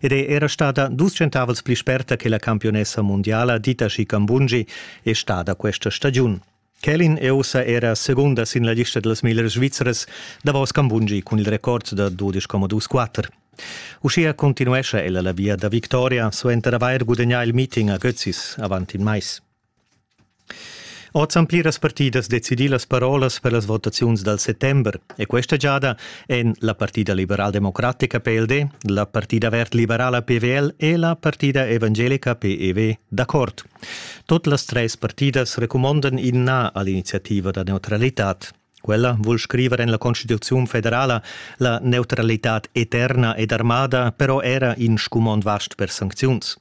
ed è era stada dus centavels pli sperta che la campionessa mundiala Dita Scicambungi è stada questa stagiun. Kelin è ussa era segunda sin la lista dals miglior svizres, davos Cambungi cun il record da 12,24. Uschia continuescha ella la via da victoria suenter avair gudagnà il meeting a Götzis avant in mais. Oz han pliras partidas decidì las parolas per las votaziuns dal settember e questa giada èn la partida liberaldemocratica PLD, la partida verd-liberala PVL e la partida evangelica PEV d'accord. Tot las treis partidas recumondan in na a l'iniziativa da neutralitad. Quella vul scriver en la Constituziun federala la neutralitad eterna ed armada però era in scumond vast per sancziuns.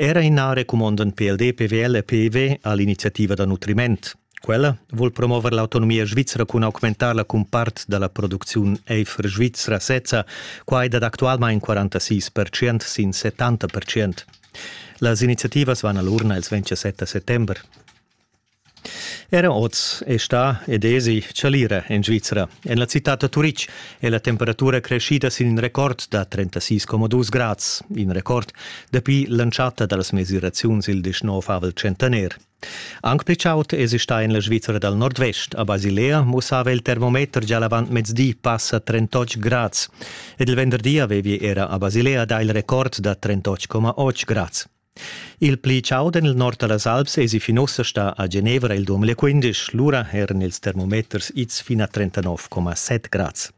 Era ina recumonda pel DPWL e PIV ha l'iniziativa da nutriment. Quella vuol promover l'autonomia svizra cun augmentarla cun part dalla producziun Eifer Svizra sezza, quai dat actualmain 46% sin 70%. Las iniziativas van all'urna ils 27 settember. Era oz è stà ed èsi chalira en Svizra. En la citad da Turitg è la temperatura creschida sin in record da 36,2 grads, in record dapi l'entschatta da las mesiraziuns il 19 centener. Anc pli chaud èsi stà en la Svizra dal nordvest. A Basilea mussava il termometer gia l'avant mezdi passa 38 grads ed il venderdi avevi era a Basilea dà il record da 38,8 grads. Il pli chau en il nord da las Alps èsi fin ussa stà a Genevra il 2015, lura eran ils termometers ids fin a 39,7 grads.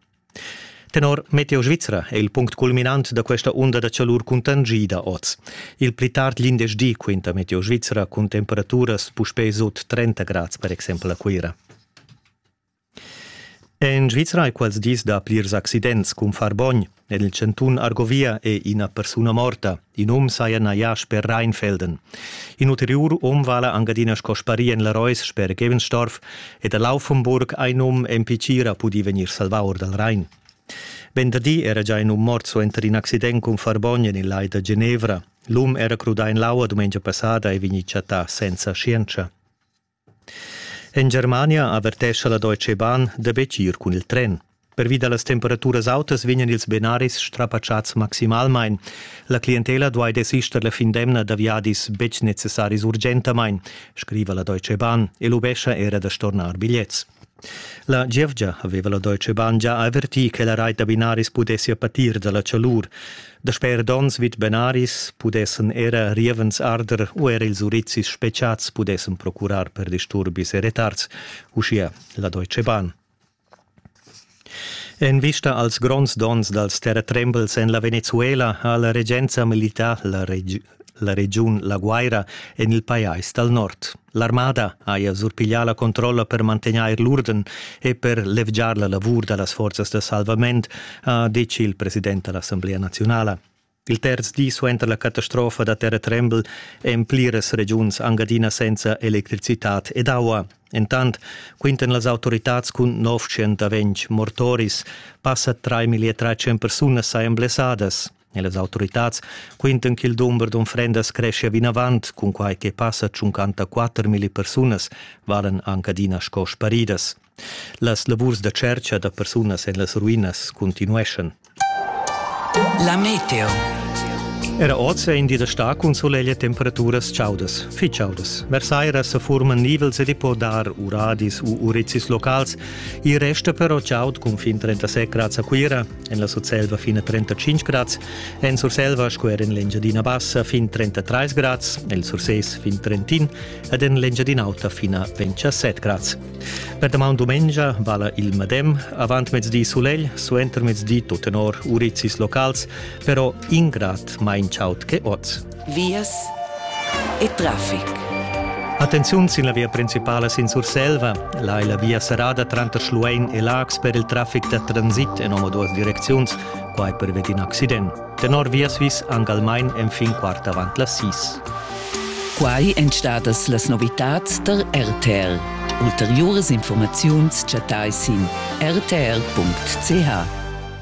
Tenor Meteo Svizra è il punct culminant da questa onda da chalur cuntangida oz. Il pli tard l'indeschdi quinta Meteo Svizra cun temperaturas puspè sut 30 grads, per exempel a Cuira. En Svizra è quels dis da plirs accidents cun far bogn. En il chantun Argovia è ina persuna morta. In um saja najà sper Rheinfelden. In ulteriur um vala anc adina sco sparì en la Reus sper Gevenstorf ed a Laufenburg ein um MP Tgira pudì vegnir salvà or dal Rhein. Venderdi era già in um mort suenter in accident cun far bogn en il lai da Genevra. L'um era crudà en l'aua dumengia passada e vegnì chattà senza scienza. En Germania avertescha la Deutsche Bahn da betg ir cun il tren. Pervi da las temperaturas autas vegnan ils binaris strapatschads maximalmain. La clientela duai desister la fin d'emna da viadis betg necessaris urgentamain, scriva la Deutsche Bahn e lubescha era da stornar bigliets. La gievgia haveva la Deutsche Bahn gia avertì che la reit da binaris pudessia patir dalla chalur. Dasper donns vid binaris pudessen era rievens arder u er ils urizis speciats pudessen procurar per disturbis e retards, uschia la Deutsche Bahn. En vista als gronds donns dals terratrembels en la Venezuela ha la regenza milità la regi la regiun La Guaira en il pajais dal nord. L'armada haja surpiglià la controlla per mantegnair l'urden e per levgiar la lavur da las forzas da salvament, ha detg il president da l'Assemblea naziunala. Il terz di suenter la catastrofa da terratrembel èn pliras regiuns anc adina senza electricitad ed aua. Entant quintan las autoritads cun 900 ventg mortoris. Passa 3.300 persunas sajan blessadas. E las autoritads quintan ch'il dumber d'unfrendas creschia vinavant, cun quai che passa 54 milli persunas valan anc adina sco sparidas. Las lavurs da tschertga da persunas en las ruinas continueschan. La meteo. Era oz è in di da stà cun suleglia temperaturas chaudas, fitg chaudas. Versaira sa furman nivels ed i po dar uradis u urizis locals. Il resta però chaud cun fin 37 grads a Cuira, En la Surselva fin a 35 grads, en Surselva sco er en l'Engiadina Bassa fin 33 grads, el Surses fin Trentin ed en l'Engiadina Auta fin a 27 grads. Per damaun dumengia vala il medem, avant mezdi sulegl, suenter mezdi tut tenor urizis locals, però in grad mai in chaud che oz. vias e traffic. Attenziun sin la via principala sin Surselva. Là è la via serrada tranter Schluein e Laax per il traffic da transit en omaduas direcziuns, quai perved in accident. Tenor Viasvis anc almain enfin quart avant las sis. Quai èn stadas las novitads tar RTL. Ulteriuras informaziuns chattai sin rtr.ch.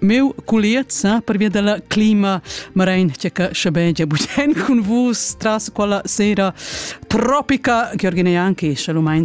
Meu culiet sa per via della clima marein che che schabe ja bugen cun vus tras quella sera tropica che organia anche schalumeins